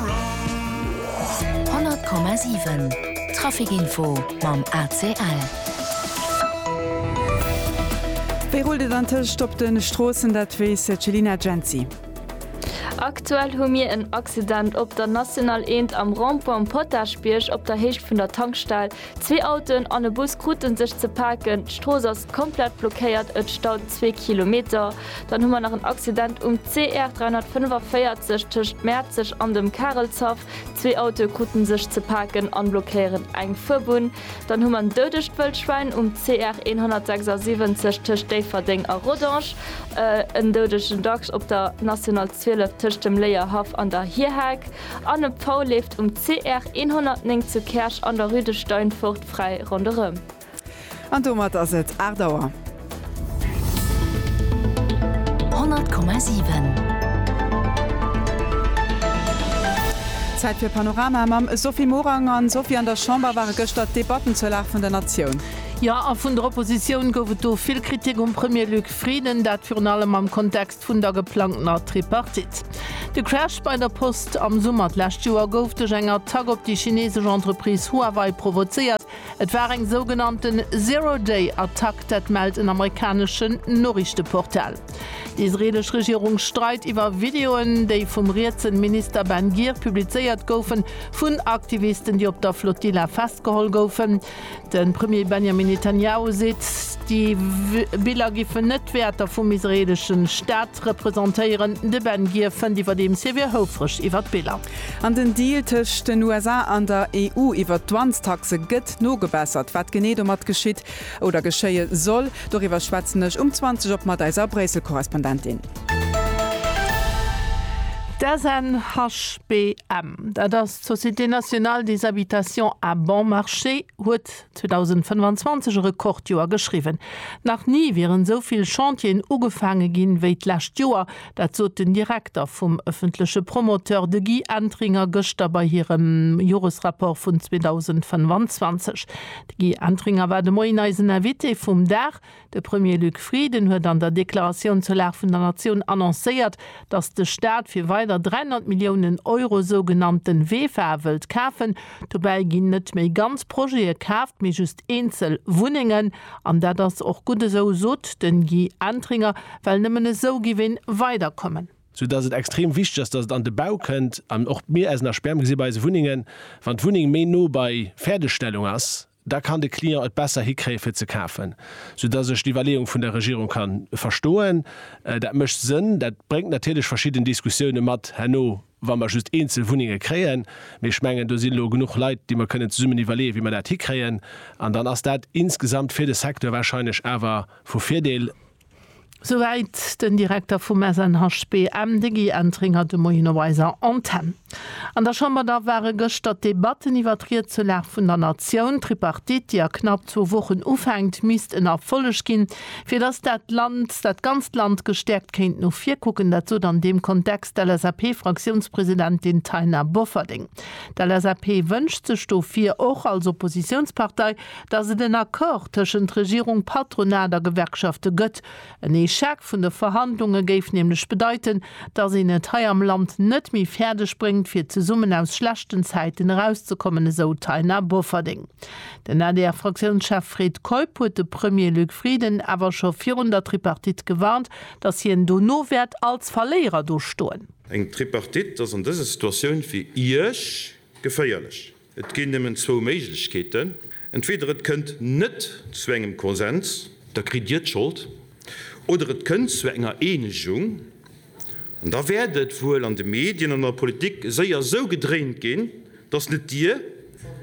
100,7 Trafic Info mam ACL. Wéi rullt et antëscht op de Stroossen? Dat weess d'Chelina Jency. Aktuell hu mir en Accident op der National 1 am Rond-point Potaschbierg op der Héicht vun der Tankstell. Zwee Autoen an e Bus kruten sech ze paken, d'Strooss ass komplett blockéiert, et staut zwee Kilometer. Dann hu mer nach en Accident um CR 345 tëscht Mäerzeg an dem Karelshaff. Zwee Autoe kruten sech ze paken an blockéieren eng Fuerbunn. Dann hu mer en doudegt Wëllschwäin um CR 176 tëscht Déifferdeng a Rodange, en doudegen Dachs op der National 12 tëscht dem Léierhaff an der Hierhack. An e Pfau leeft um CR 109 zu Käerch an der Rue de Steinfort fräi ronderëm. An domat ass et 8 Auer. 100,7. Zäit fir Panorama mam Sophie Morang. An Sophie, an der Chamber ware gëschter d'Debatten zur Lag vun der Natioun. Jo, a vun der Oppositioun gouf et do vill Kritik um Premier Luc Frieden. Dat virun allem am Kontext vun der geplangtener Tripartite. De Crash bei der Post am Summer d'lescht Joer gouf duerch eng Attack op déi chinesesch Entreprise Huawei provozéiert. Et war eng sougenannte Zero-Day-Attack, dat mellt en amerikaneschen Noriichteportal. D'isreelesch Regierung streit iwwer Videoen, déi vum rietsen Minister Ben Gir publizéiert goufen, vun Aktivisten, déi op der Flotilla festgeholl goufen. De Premier Benjamin Netanjahu seet, déi Biller géifen net d'Wäerter vum israeelesche Staat representéieren. De Ben Gir fënnt iwwerdeems, hie wier houfreg iwwer d'Biller. An den Deal tëscht den USA an der EU iwwer d'Dwangs-Taxe gëtt nogebessert. Wat genee domat geschitt oder geschéie soll, doriwwer schwätzen ech um 20 op mat eiser Bréissel-Korrespondentin. D'SNHBM, dat ass D'Société Nationale des Habitations à Bon Marché huet 2025 e Rekordjoer geschriwwen. Nach ni wieren esou vill Chantieren ugefaange ginn, wéi d'lescht Joer. Dat sot den Direkter vum ëffentleche Promoteur, de Guy Entringer, gëschter bei hirem Joresrapport vun 2025. De Guy Entringer war de Moien eisen Invité vum Dag. De Premier Luc Frieden huet an der Deklaratioun zur Lag vun der Natioun annoncéiert, datt de Staat fir weider 300 Milliounen Euro sougenannte VEFA wëllt kafen. Dobäi ginn net méi ganz Projete kaaft, mee just eenzel Wunnengen. An dat ass och gutt esou, sot de Guy Entringer, well nëmmen esou géif ee weiderkommen. Sou datt et extrem wichteg ass, datt et an de Bau kënnt. An och mir, eisen Asperm, gesi bei eise Wunnengen, wann d'Wunneng méi no bei Fäerdegstellung ass, da kann de Client et besser hikréien fir ze kafen, sou dass ech d'Iwwerleeung vun der Regierung ka verstoen. Dat mécht Sënn. Dat bréngt natierlech verschidden Diskussioune mat herno, wa mer just eenzel Wunnenge kréien, mee ech mengen do si lo genuch Leit, déi mer kënnen zesummen iwwerleeën, wéi mer dat hikréien, an dann ass dat insgesamt fir de Secteur warscheinlech awer vu Virdeel. Souwäit den Direkter vum SNHBM, de Guy Entringer, de Moien op eiser Antenn. An der Chamber da ware gëschter d'Debatten iwwer d'Rietzurlag vun der Natioun. D'Tripartite, déi a knapp zwou Wochen ufänkt, misst en Erfolleg ginn, fir datt dat Land, dat ganzt Land gestäerkt kéint no vir kucken. Dat sot an deem Kontext d'LSAP-Fraktiounspresidentin Taina Bofferding. D'LSAP wënscht sech dofir och als Oppositiounspartei, datt et en Accord tëschent Regierung, Patronat a Gewerkschafte gëtt. En Echec vun de Verhandlunge géif nämlech bedeiten, datt een et hei am Land net méi fäerdeg bréngt, fir zesummen aus schlechten Zäiten erauszekommen, esou d'Taina Bofferding. Den ADR-Fraktiounschef Fred Keup huet de Premier Luc Frieden awer scho virun der Tripartite gewarnt, datt hien dono wäert als Verléierer do stoen. Eng Tripartite ass an dëser Situatioun fir Iech geféierlech. Et ginn nëmmen zwou Méiglechkeeten, entweder et kënnt net zu engem Konsens, da kritt Dir d'Schold, oder et kënnt zu enger Eenegung, an da wäert et wuel an de Medien an an der Politik séier esou gedréint ginn, datt net Dir,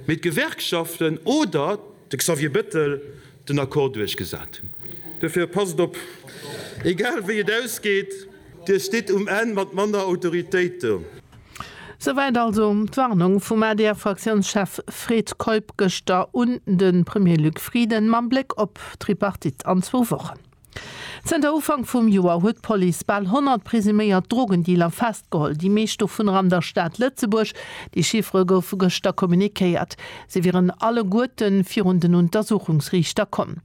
mee d'Gewerkschaften oder de Xavier Bettel den Accord duerchgesat hunn. Dofir passt op, egal wéi et ausgeet, Dir stitt um Enn mat manner Autoritéit do. Souwäit also d'Warnung vum ADR-Fraktiounschef Fred Keup gëschter un de Premier Luc Frieden mam Bléck op d'Tripartite an zwou Wochen. Zënter Ufank vum Joer huet d'Police bal 100 presuméiert Drogendealer festgeholl, déi meescht dovunner an der Stad Lëtzebuerg. Déi Chiffere goufe gëschter communiquéiert. Se wieren alleguerte virun den Untersuchungsriichter komm.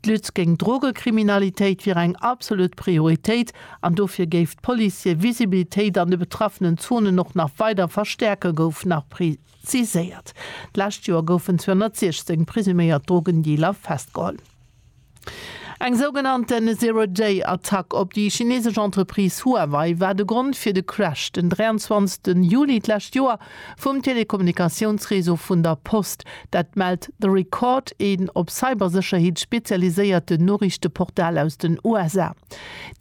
D'Lutte géint Drogekriminalitéit wier eng absolut Prioritéit an dofir géif d'Police hir Visibilitéit an de betraffenen Zonen och nach weider verstäerken, gouf nach preziséiert. D'lescht Joer goufen 216 presuméiert Drogendealer festgeholl. Eng sougenannten Zero-Day-Attack op déi chinesesch Entreprise Huawei war de Grond fir de Crash den 23 Juli d'lescht Joer, Vum Telekommunikatiounsreseau vun der Post. Dat mellt The Record, een op Cybersécherheet spezialiséierten Noriichteportal aus den USA.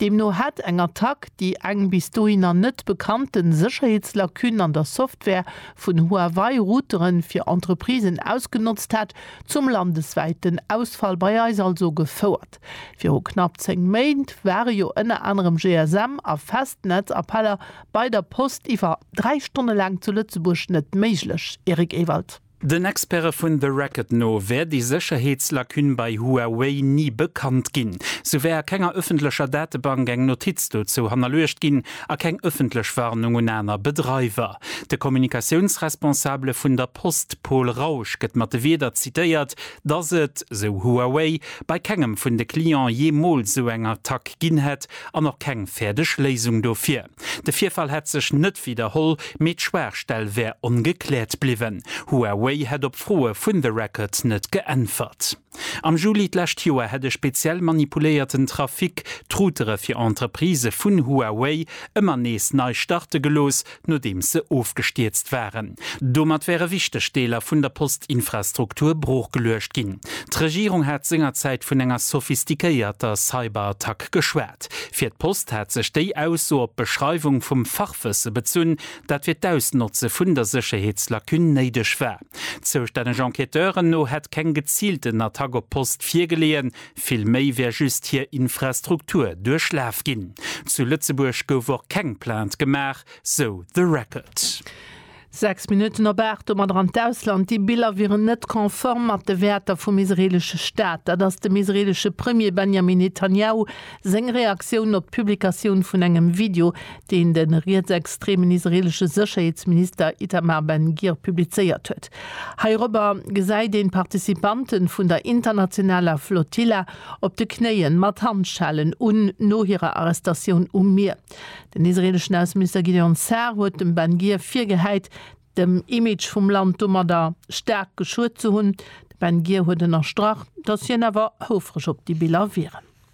Deemno hätt eng Attack déi eng bis dohinner net bekannte Sécherheetslacune an der Software vun Huawei Routere fir Entreprisen ausgenotzt hat zum landeswäiten Ausfall bei eis also gefouert. Viru knapp 10 Méint ware jo ënner anerem GSM a Festnetz-Appeller bei der Post iwwer 3 Stonne laang zu Lëtzebuerg net méiglech, Eric Ewald. Den Experte vun The Record no wär déi Sécherheetslacune bei Huawei ni bekannt ginn. Sou wär a kenger ëffentlecher Datebank eng Notiz dozou hannerluecht ginn a keng ëffentlech Warnung un aner Bedreiwer. De Kommunikatiounsresponsabele vun der Post Paul Rausch gëtt mat de Wierder zitéiert, dass et, sou Huawei, bei kengem vun de Client jeemools sou eng Attack ginn hätt an och keng fäerdeg Léisung dofir. De Virfall hätt sech net widderholl, mee d'Schwaachstell wär ongekläert bliwwen. Huawei hätt op Froe vun The Record net geäntwert. Am Juli d'lescht Joer hätt e speziell manipuléierten Trafic d'Routere fir Entreprisë vun Huawei ëmmer nees nei starte gelooss, nodeems se ofgestierzt waren. Domat wäre wichteg Deeler vun der Postinfrastruktur broochgeluecht ginn. D'Regierung hat sengerzäit vun enger sophistiquéierter Cyberattack geschwat. Fir d'Post hat sech déi Ausso op d'Beschreiwung vum Fachwësse bezunn, dat fir d'Ausnotze vun der Sécherheetslacune néideg war. Zoustänneg Enquêteuren no hätt keng geziilten Attack op d'Post virgeleeën, Vill méi wär just hir Infrastruktur duerchlaf ginn. Zu Lëtzebuerg gouf och keng Plainte gemaach, sou The Record. Sechs Minutten op aacht, domadder an d'Ausland. Déi Biller wieren net konform mat de Wäerter vum israeelesche Staat. Dat ass dem israeelesche Premier Benjamin Netanjahu seng Reaktioun op d'Publikatioun vun engem Video, deen de rietsextreemen israeelesche Sécherheetsminister Itamar Ben-Gir publizéiert huet. Heirobber gesäit een d'Participanten vun der internationaler Flotilla op de Knéien, mat Handschellen un, no hirer Arrestatioun um Mier. Den israeleschen Ausseminister Gideon Sa'ar huet dem Ben Gvir virgehäit, dem Image vum Land domadder staark geschuet ze hunn. De Ben Gvir huet ënnerstrach, datt hien awer houfreg op déi Biller wieren.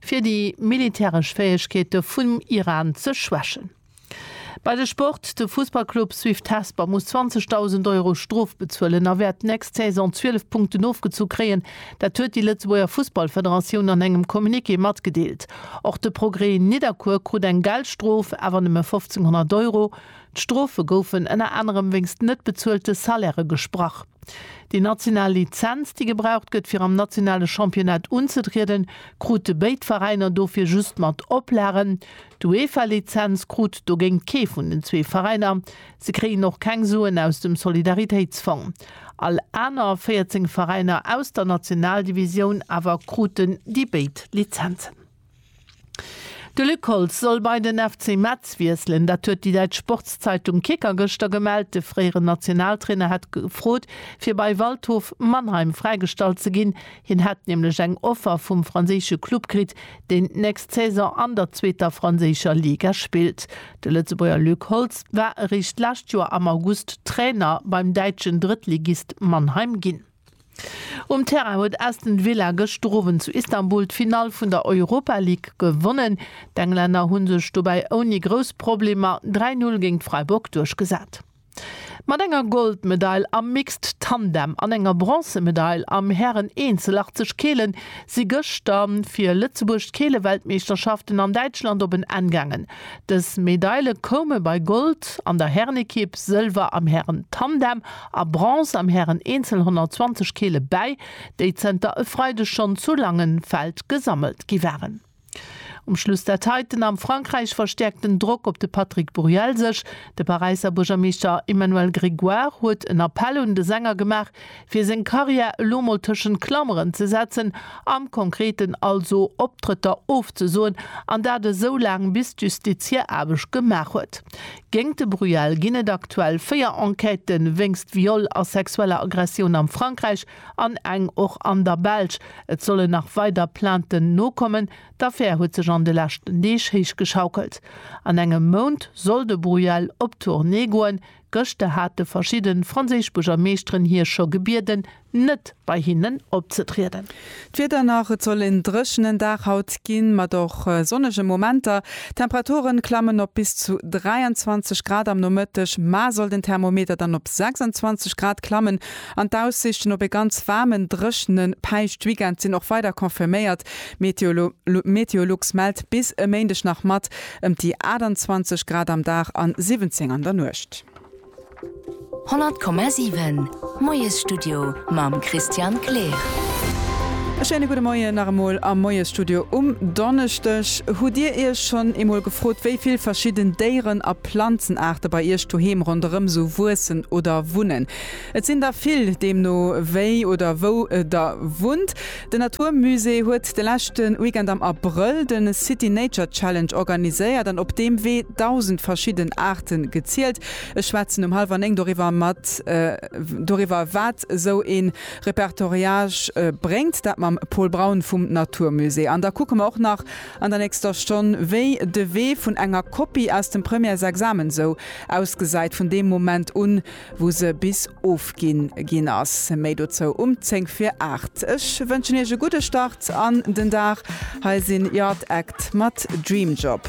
fir déi militäresch Fäegkeete vum Iran ze schwächen. Bei de Sport, De Fussballclub Swift Hesper muss 20.000 Euro Strof bezuelen a wäert d'nächst Saison 12 Punkten ofgezu kréien. Dat huet déi Lëtzebuerger Fussballfederatioun an engem Communiqué matgedeelt. Och de Progrès Nidderkuer krut eng Geldstrof, awer nëmme 1.500 Euro. D'Strofe goufen ënner anerem wéinst net bezuelte Salairë gesprach. Déi national Lizenz, déi gebraucht gëtt, fir am nationale Championnat unzetrieden, krute béid Veräiner dofir just mat Oplagen. D'UEFA-Lizenz krut dogéint kee vun den zwee Veräiner. Se kréien och keng Suen aus dem Solidaritéitsfong. All aner 14 Veräiner aus der Nationaldivisioun awer kruten déi béid Lizenzen. De Luc Holtz soll bei den FC Metz wiesselen. Dat huet déi däitsch Sportszeitung Kicker gëschter gemellt. De fréieren Nationaltrainer hätt gefrot, fir bei Waldhof Mannheim fräigestallt ze ginn. Hien hätt nämlech eng Offer vum franséische Club kritt, deen d'nächst Saison an der zweeter franséischer Liga spillt. De Lëtzebuerger Luc Holtz war eréischt d'lescht Joer am August Trainer beim däitschen Drëttligist Mannheim ginn. Um Terrain huet Aston Villa gëschter Owend zu Istanbul d'Finall vun der Europa League gewonnen. D'Englänner hu sech dobäi ouni grouss Problemer 3 Null géint Freiburg duerchgesat. Mat enger Goldmedail am Mixed Tandem an enger Bronzemedail am Hären Eenzel 80 Kele si gëschter fir Lëtzebuerg d'Keeleweltmeeschterschaften an Däitschland op en Enn gaangen. Dës Medaile koume bei Gold an der Härenekipp, Sëlwer am Hären-Tandem a Bronze am Hären-Eenzel 120 Kile bäi, déi zënter e Freideg schonn zu Langenfeld gesammelt gi waren. Um Schluss dat hei, Den am Frankräich verstäerkt den Drock op de Patrick Buriel sech. De Paräisser Buergermeeschter Emmanuel Grégoire huet en Appell un de Sänger gemaach, fir seng Karriär elo mol tëschent Klameren ze setzen, am Konkreten also Optrëtter ofzesoen, an dat esou laang bis d'Justiz hir Aarbecht gemaach huet. Géingt de Bruel ginn et aktuell véier Enquêten wéinst Viol a sexueller Aggressioun am Frankräich an eng och an der Belsch. Et sollen nach weider Plainten nokommen. D'Affär huet sech an de leschten Deeg héichgeschaukelt. An engem Mount soll de Bruel op Tournée goen. Gëschter hate verschidde franséisch Buergermeeschteren hie scho gebieden, net bei hinnen opzetrieden. D'Wieder nach, Et soll en dréchenen Dag haut ginn, mat och sonnege Momenter. D'Temperature klammen op bis zu 23 Grad am Nomëtteg, mar soll den Thermometer dann op 26 Grad klammen. An d'Aussiichten op e ganz waarmen, dréchene Päischt-Weekend sinn och weider confirméiert. Meteolux mellt bis e Méindeg nach mat. Ëmt déi 28 Grad am Dag an 17 an der Nuecht. 100,7 Moiesstudio mam Christian Kleer. E schéine gudde Moien nach emol am Moiesstudio um Donneschdeg. Hutt Dir Iech schonn eemol gefrot, wéi vill verschidden Déieren a Planzenaarte bei Iech doheem ronderëm sou wuessen oder wunnen? Et sinn der vill, deemno wéi oder wou Der wunnt. Den Natur Musée huet de leschten Weekend am Abrëll den City Nature Challenge organiséiert an op deem Wee 1000 verschidden Aarten gezielt. Ech schwätzen um halwer 9 doriwwer mat doriwwer wat sou een Repertoriage bréngt, dat mam Paul Braun vum Natur Musée. An da kucke mer och nach an der nächster Stonn wéi de Wee vun enger Kopie aus dem Premièresexamen sou ausgesäit vun deem Moment un wou se bis ofginn ginn ass. Méi dozou um 10 vir 8. Ech wënschen iech e gudde Start an den Dag. Hei sinn Yard Act mat Dream Job.